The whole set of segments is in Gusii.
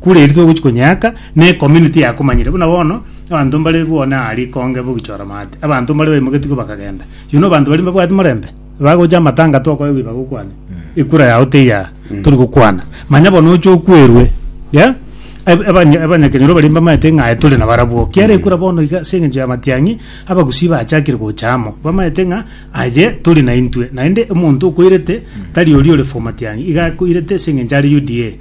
Kure eri togochi konyeaka ne community yakomanyire buna bono abanto mbare bwone aa rikonge bogichora maate abanto mbare baimogetigwe bakagenda you know abanto baria mbabwate morembe bagocha amatanga tokoegwa ibagokwana ekura yao teiya tori gokwana manya bono oche okwerwe yeah aba- abanya- abanyakenyoro baria mbamaete ng'a aye tore na barabwo kiara ekura bono iga ase engencho ya matiang'i abagusii bachakire gocha amo bamaete ng'a aye tore naintwe naende omonto okoirete tari oria ore for matiang'i iga akoirete ase engencho are UDA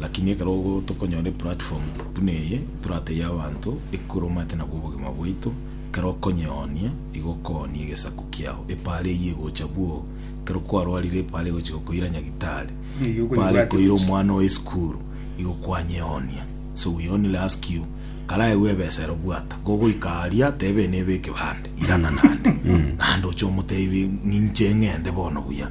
Lakini ekero tokonyora eplatform buna eye, toratebie abanto, ekura omanyete nabwo obogima bwaito, ekero okonyionia, igo okoonia egesaku kiao. Epaara eyio egocha bwoo, ekero kwarwarire epaara egochi gokoira nyagitari, Eyio okoigwa epaara ati ekoira gochi. omwana oye esukuru, igo kwanyionia. So we only ask you, karaegwe ebesa ero bwata, kogoika aria, tebe nebe ekebande, irana naende. Naende oche omotebi, ninche ng'ende bono buya.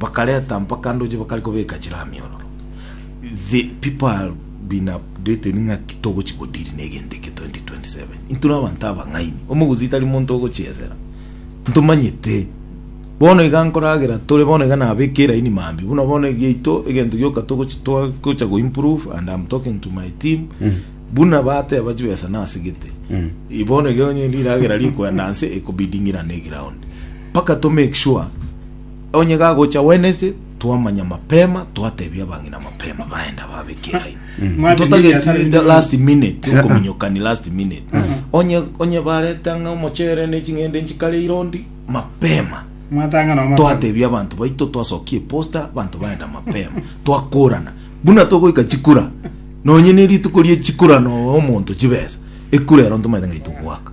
bakareta mpaka ndoche bakare kobeka chiramiororo. The people have been updated ng'a ki togochi go deal na egento eke 2027. Intwe na abanto abang'aini. Omogusi tari monto ogochiesera. Ntomanyete. Bono iga nkoragera tore bono iga nabeke eraini mambia. Buna bono egeito egento gioka togochi togocha go improve and I'm talking to my team. Buna bateba chibesa nasegete. Bono iga onye riragera rikoenda nse ekobiding'irana eground. Mpaka to make sure onye gagocha Wednesday twamanya mapema twatebia abang'ina mapema baende ababeke line ntotageti last minute okominyokani last minute onye onye barete ang'a omochere ne ching'ende nchikare irondi mapema twatebia abanto baito twasokia eposta abanto baenda mapema twakorana buna togoika chikura nonye ne rituko rie chikura no omonto chibesa ekura ero ntomaete ng'a itogwaka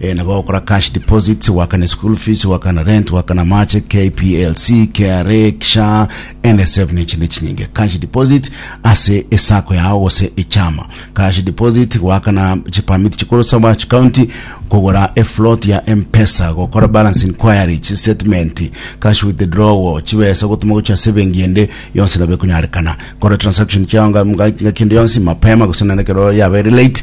Ee nabo ogokora cash deposits, goakana eschool fees, goakana rent, goakana amache, KPLC, KRA, SHA, NSSF na echinde chinyinge. Cash deposit ase esacco yao gose echama. Cash deposit, goakana chipermit chikorosa aba chikaunti, kogora efloat ya M-Pesa, gokora balance inquiry, chistatement, cash withdrawal, chibesa gotuma gochia ase ebenki ende yonsi nabo ekonyarekana. Kora transaction chiao nga- nga- ngaki ende yonsi mapema gose naende ekero yabeire late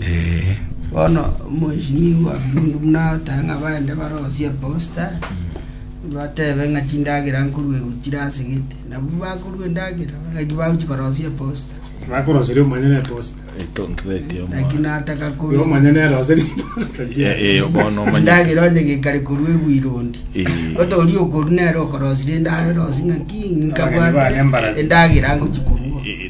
Ee. Bono omoisinigwa bw'ebiundu buna otae ng'a baende barosie eposta, batebe ng'a chindagera nkorwa igoro chire ase gete. Nabwo bakorua endagera, eki bagochi korosia eposta. Bakoroseria omonyene na eposta. Etontoretie Naki omwana. nataka Oyo korwa omonyene eroseria eposta. Eh, eh, bono omanye. endagera onye gekare korwa ebuirondi. Eh. Boto oria okorwa nere okorosire endagera osi ng'aki Abageni bane mbarabi. nkabwate endagera ngochi korua. Eh,